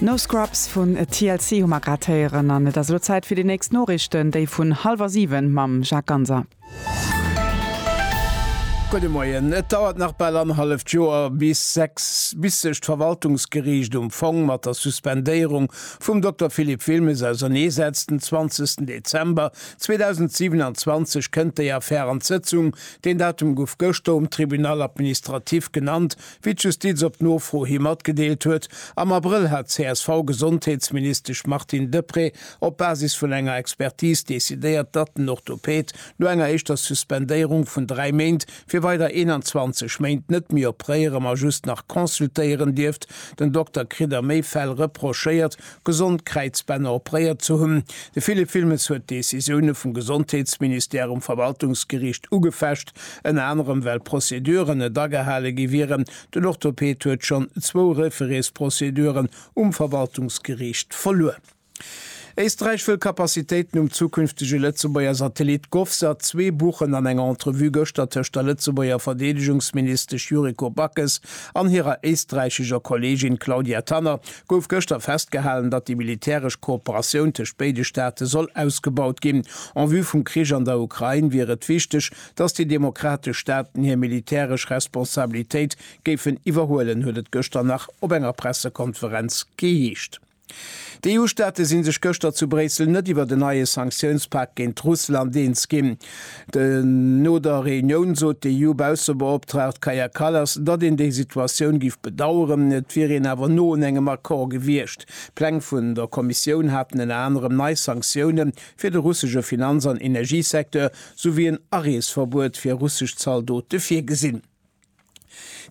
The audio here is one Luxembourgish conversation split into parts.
No Scrubs vun TLC hu mer grad héieren an et ass elo Zäit fir déi nächst Noriichten, déi vun hallwer 7 mam Jacques Ganser. Gudde Moien. Et dauert nach bal annerhalleft Joer bis sechs bis sech d'Verwaltungsgeriicht um Fong mat der Suspendéierung vum Dokter Philippe Wilmes ausernee setzt. Den 20 Dezember 2027 kënnt déi Affär an d'Sëtzung. Deen Datum gouf gëschter um Tribunal administratif genannt, Wéi d'Justiz op Nofro hi matgedeelt huet, am Abrëll hat d'CSV-Gesondheetsministesch Martine Deprez op Basis vun enger Expertis decidéiert, datt den Orthopäd no enger éischter Suspendéierung vun dräi Méint fir weider 21 Méint net méi opréiere ma just nach consultéieren dierft. Den Dokter kritt a méi Fäll reprochéiert, gesond Kräizbänner opréiert ze hunn. De Philippe Wilmes huet d'Decisioune vum Gesondheetsministère um Verwaltungsgeriicht ugefecht. Ënner anerem well Prozeduren net agehale gi wieren. Den Orthoped huet schonn zwou Refereesprozeduren um Verwaltungsgeriicht verluer. Éisträich wëll Capacitéiten um zukünftege Lëtzebuerger Satellit Govsat zwee buchen. An enger Entrevue gëschter tëscht der Lëtzebuerger Verdeedegungsministesch Yuriko Backes an hirer éisträichescher Kolleegin Claudia Tanner gouf gëschter festgehalen, datt déi militäresch Kooperatioun tëscht béide Staate soll ausgebaut ginn. En vue vum Krich an der Ukrain wier et wichteg, datt déi demokratesch Staaten hir militäresch Responsabilitéit géifen iwwerhuelen, huet et gëschter nach op enger Pressekonferenz geheescht. D'EU-Staate si sech gëschter zu Bréissel net iwwert en neie Sanktiounspak géint Russland eens ginn. No der Reunioun sot déi EU-Baussebeoptraagt Kaja Kallas, datt een déi Situatioun géif bedaueren, et wier een awer no un engem Accord gewiescht. D'Pläng vun der Kommissioun haten ënner anerem nei Sanktioune fir de russesche Finanz an Energiesecteur, souwéi en Areesverbuet fir russesch Zaldote virgesinn.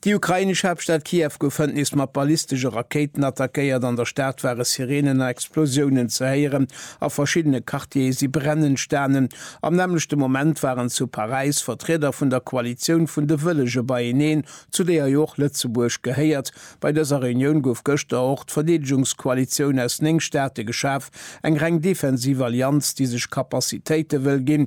Déi ukrainesch Haaptstad Kiew gouf hënt nees mat ballistesche Rakéiten attackéiert. An der Stad ware Sireenen a Explosiounen ze héieren. A verschiddene Quartiere si Bränn entstanen. Am nämmlechte Moment waren zu Paräis Vertrieder vun der Koalitioun vun de Wëllege beieneen, zu deeër jo och Lëtzebuerg gehéiert. Bei dëser Reunioun gouf gëschter och d'Verdeedegungskoalitioun aus 9 Staate geschaf, eng reng defensiv Allianz, déi sech Capacitéite wëll ginn,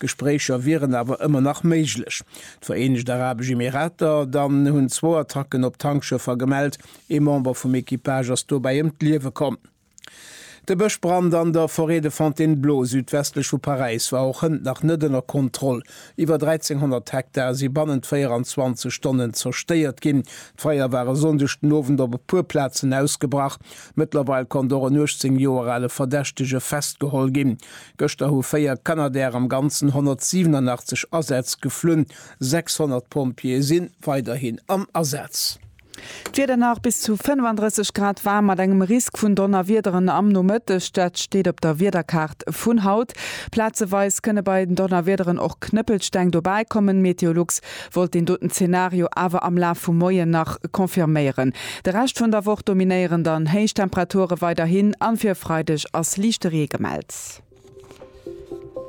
Gespréicher wieren awer ëmmer nach méiglech. D'Vereenegt Arabesch Emirater dann hunn zwou Attacken op Tankschëffer gemellt. Ee Member vum Equipage ass dobäi ëm d'Liewe komm. De Bëschbrand an der Forêt de Fontainebleau südwestlech vu Paräis war och hënt nach net ënner Kontroll. Iwwer 1.300 Hektar si bannent 24 Stonnen zerstéiert ginn. D'Feier war e Sonndeg den Owend op e puer Plazen ausgebrach. Mëttlerweil konnt och en 18 Joer ale Verdächtege festgeholl ginn. Gëschter hu 4 Canadair am Ganzen 187 Asätz geflunn. 600 Pompjeeë si weiderhin am Asaz. D'Wieder nach bis zu 35 Grad waarm mat engem Risk vun Donnerwiederen am Nomëtteg. Dat steet op der Wiederkaart vun haut. Plazeweis kënne bei den Donnerwiederen och Knëppelsteng dobäikommen. Meteolux wollt deen doten Zenario awer am Laf vum Moien nach confirméieren. De Rescht vun der Woch dominéieren dann héich Temperature weiderhin an fir e Freideg ass liichte Ree gemellt.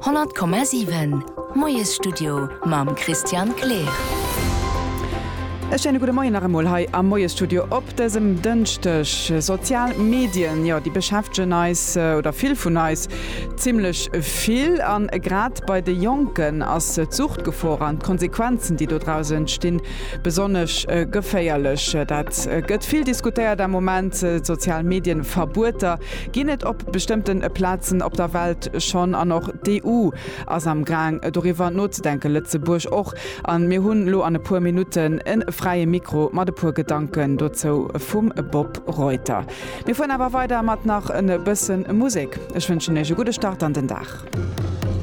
100,7 Moiesstudio mam Christian Kleer. E schéine gudde Moien nach emol hei am Moiesstudio op dësem Dënschdeg. Sozial Medien, jo, déi beschäftegen eis, oder vill vun eis, zimmlech vill. A grad Bei de Jonken ass d'Suchtgefor an d'Konsequenzen, déi dodraus entstinn, besonnesch geféierlech. Dat gëtt vill diskutéiert am Moment, d'sozial Medien-Verbueter ginn et op bestëmmte Plazen op der Welt schonn an och d'EU ass am Gaang doriwwer nozedenken, Lëtzebuerg och. A mir hunn elo an e puer Minutten e fräie Mikro mat e puer Gedanken dozou vum Bob Reuter. Mir fueren awer weider mat nach e bësse Musek. Ech wënschen Iech e gudde Start an den Dag.